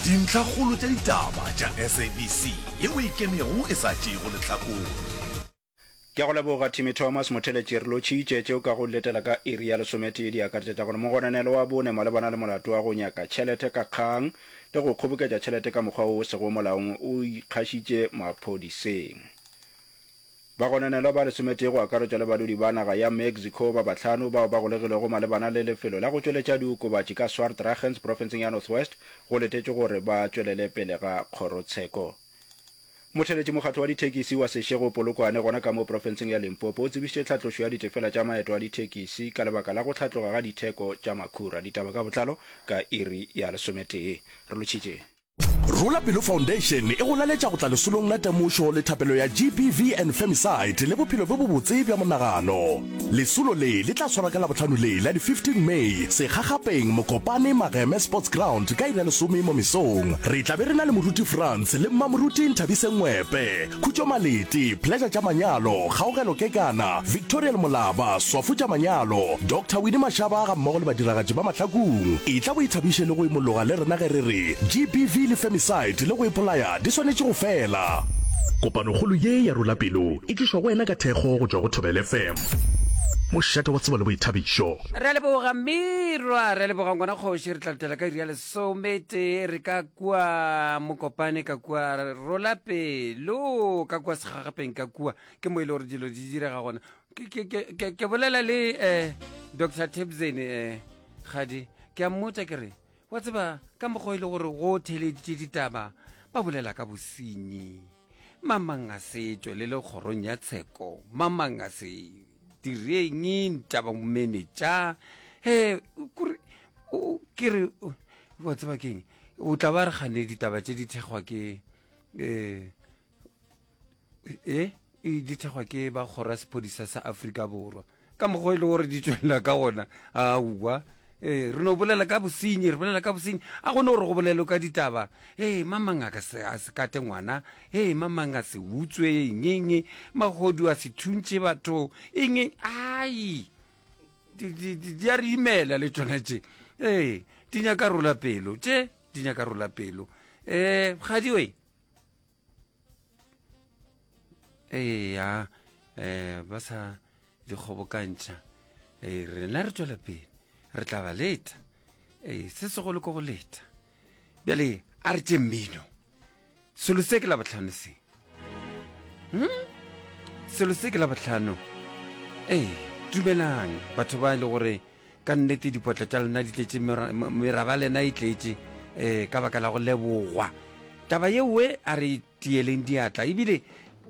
Dintlhakgolo tša ditaba tša SABC ye o e kenego e sa tšeego lehlakore. Ke a go leboga Timmy Thomas, motheletši. Re lotšhitše tše o ka go letela ka iri ya lesometee. Di akaretša tša gore mogononelo wa bone malebana le molato wa go nyaka tšhelete ka kgang le go kgoboketša tšhelete ka mokgwa o o sego molaong o ikgašitše maphodiseng. Bagononelwa ba lesometee go akaretšwa le badudi ba naga ya Mexico ba bahlano bao ba golegilwego malebana le lefelo la go tšweletša diokobatši ka Swartragens profenseng ya Northwest go letetšwe gore ba tšwelele pele ga kgorotsheko. Motheeletši mokgatlo wa dithekisi wa Seshego Polokwane gona ka mo profenseng ya Limpopo o tsebišitše tlhatlošo ya ditefela tša maeto a dithekisi ka lebaka la go hlatloga ga ditheko tša makhura. Ditaba ka botlalo ka iri ya lesometee. Re lotšhitše. Rula Pelo Foundation e go laletša go tla lesolong la temošo le thapelo ya GBV and Femicide le bophelo bjo bobotse bja monagano. Lesolo le le tla tshwarwa ka Labohlano le la di 15 May segagapeng Mokopane Mageme Sports Ground ka iri ya lesome mo mesong. Re tla be re na le moruti Frans le mmamoruti Nthabise Ngwepe. Khutšo Malete, Pleasure tša manyalo, Kgaogelo Kekana, Victorial Molaba, Swafo tša manyalo, Doctor Winnie Mashaba ga mmogo le badiragatši ba Mahlakung. Etla o ithabiše le go imologa le rena ge re re GBV le femicide le go ipolaya di swanetše go fela. Kopanokgolo ye ya Rula Pelo e tlišwa go wena ka thekgo go tšwa go Thobela FM, mošate wa tsebo le boithabišo. Re a leboga mmirwa, re a leboga ngwana kgoši, re tla letela ka iri ya Sometee re ka kua Mokopane ka kua Rolape lo ka kua Segagapeng ka kua ke mo e le gore dilo di direga gona ke bolela le um eh, Dr Tebzeni um eh, gadi ke a mmotsa ke re wa tseba ka mokgwa e le gore go theleditše ditaba ba bolela ka bosenyi Mamang a se tšwelele kgorong ya tsheko, mamang a se direng ntaba mene tša he kore o ke re wa tseba keng o tla ba re gane ditaba tše di thekgwa ke eh e di thekgwa ke ba kgora sephodisa sa Afrika Borwa ka mokgwa e le gore di tswelela ka gona aowa ee re no bolela ka bosenyi re bolela ka bosenyi a gone gore go bolelo ka ditaba ee mamang a se kate ngwana ee mamang a se utswe engenge magodu a se thuntše batho enge ai di a re imela le tsone tše ee di nyaka rola pelo tše di nyaka rola pelo um kgadi oe eya um ba sa di kgobokantšha ee rena re tswela pele re tla ba leta ee se segolo ko go leta bjale a re tše mmino selo se ke la botlhano se hmm? selo se ke la botlhano ee dumelang batho ba e le gore Ka nnete dipotla tša lena di tletše, meraba lena e tletše eh, ka baka la go lebogwa. Taba ye we a re tiyeleng diatla, ebile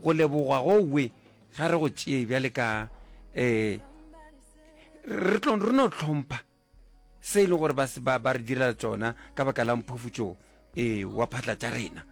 go lebogwa go we ga re go tšee bjale ka eh, re tlo re no tlhompha se e le gore ba ba re direla tsona ka baka la mphofutšo eh, wa phatla tša rena.